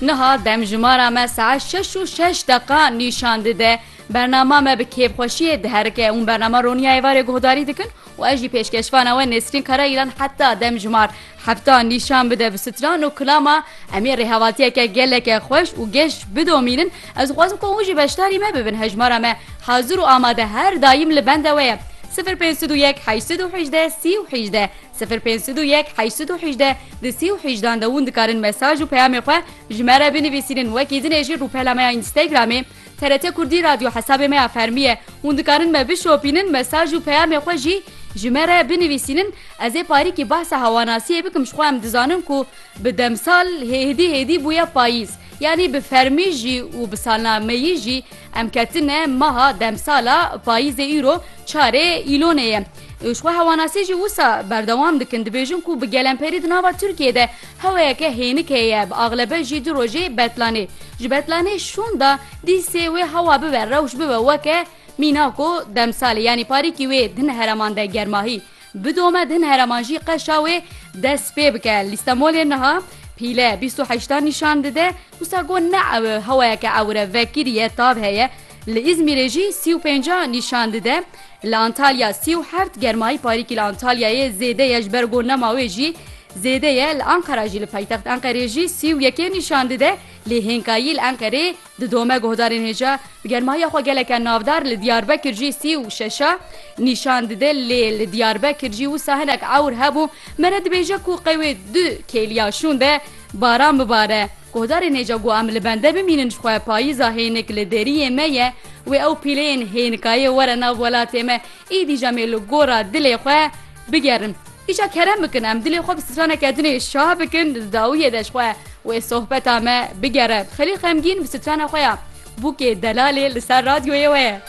Niha demjimara me saet şeş û şeş deqa nîşan dide. Bernama me bi kêfxweşiyê diherike hûn bernama Ronîya Êvarê guhdarî dikin û ez jî pêşkeşvana we Nesrîn Karayîlan heta demjimar hefta nîşan bide bi stran û kilama em ê rêhevatiyeke geleke xweş û geş bidomînin ez dixwazim ku hûn jî beşdarî me bibin hejmara me hazir û amade her dayîm li bende we ye. 0501 818 30 18 Sifir pênc sed û yek heşt sed û hîjde di sî û hîjdan de hûn dikarin mesaj û peyamê xwe ji me re binivîsînin wekî dinê jî rûpela me ya Înstagramê TRT Kurdî Radyo hesabê me ya fermî ye hûn dikarin me bişopînin mesaj û peyamê xwe jî ji me re binivîsînin ez ê parîkî behsa hewanasiyê bikim ji xwe em dizanin ku bi demsal hêdî hêdî bûye payîz yanî bi fermî jî û bi salna meyî jî Em ketine meha demsala payîzê îro çarê Îlonê ye. Xwe hewanasî jî wisa berdewam dikin dibêjin ku bi gelemperî di nava Tirkiyê de heweyeke hênik heye bi axlebe jî du rojê betlanê. Ji betlanê şonda dîsê wê hewa bibe rewş bibe weke mîna ku demsalê yanî parîkî wê din hereman de germahî bidome din hereman jî qeşa wê dest pê bike. Lîstemolê niha pîle bîst û heştan nîşan dide. Wisa got ne hewayeke ewre vekirî ye tav heye, li Îzmîrê jî sî û pênc a nîşan dide, li Antalya sî û heft, germayî parîkî li Antalyayê zêde ye ji ber ku nema wê jî zêde ye, li Enqera jî li paytext Enqerê jî sî û yekê nîşan dide, lê hênkayî li Enqerê didome guhdarên hêja bi germayiya xwe geleke navdar, li Diyarbekir jî sî û şeş a nîşan dide, lê li Diyarbekir jî wisa hinek ewr hebû, me re dibêje ku qewê du kêliya şûnde. Baran bibare, guhdarên hêja ku em li bende bimînin ji xwe payîza hênik li deriyê me ye, wê ew pîleyên hênikayê were nav welatê me, êdî jî em ê li gora dilê xwe bigerin. Îşa kerem bikin em dilê xwe bi straneke din ê şah bikin di dawiyê de ji xwe wê sohbeta me bigere. Xelîl Xemgîn bi strana xwe ya Bûkê Delalê li ser radyoyê we ye.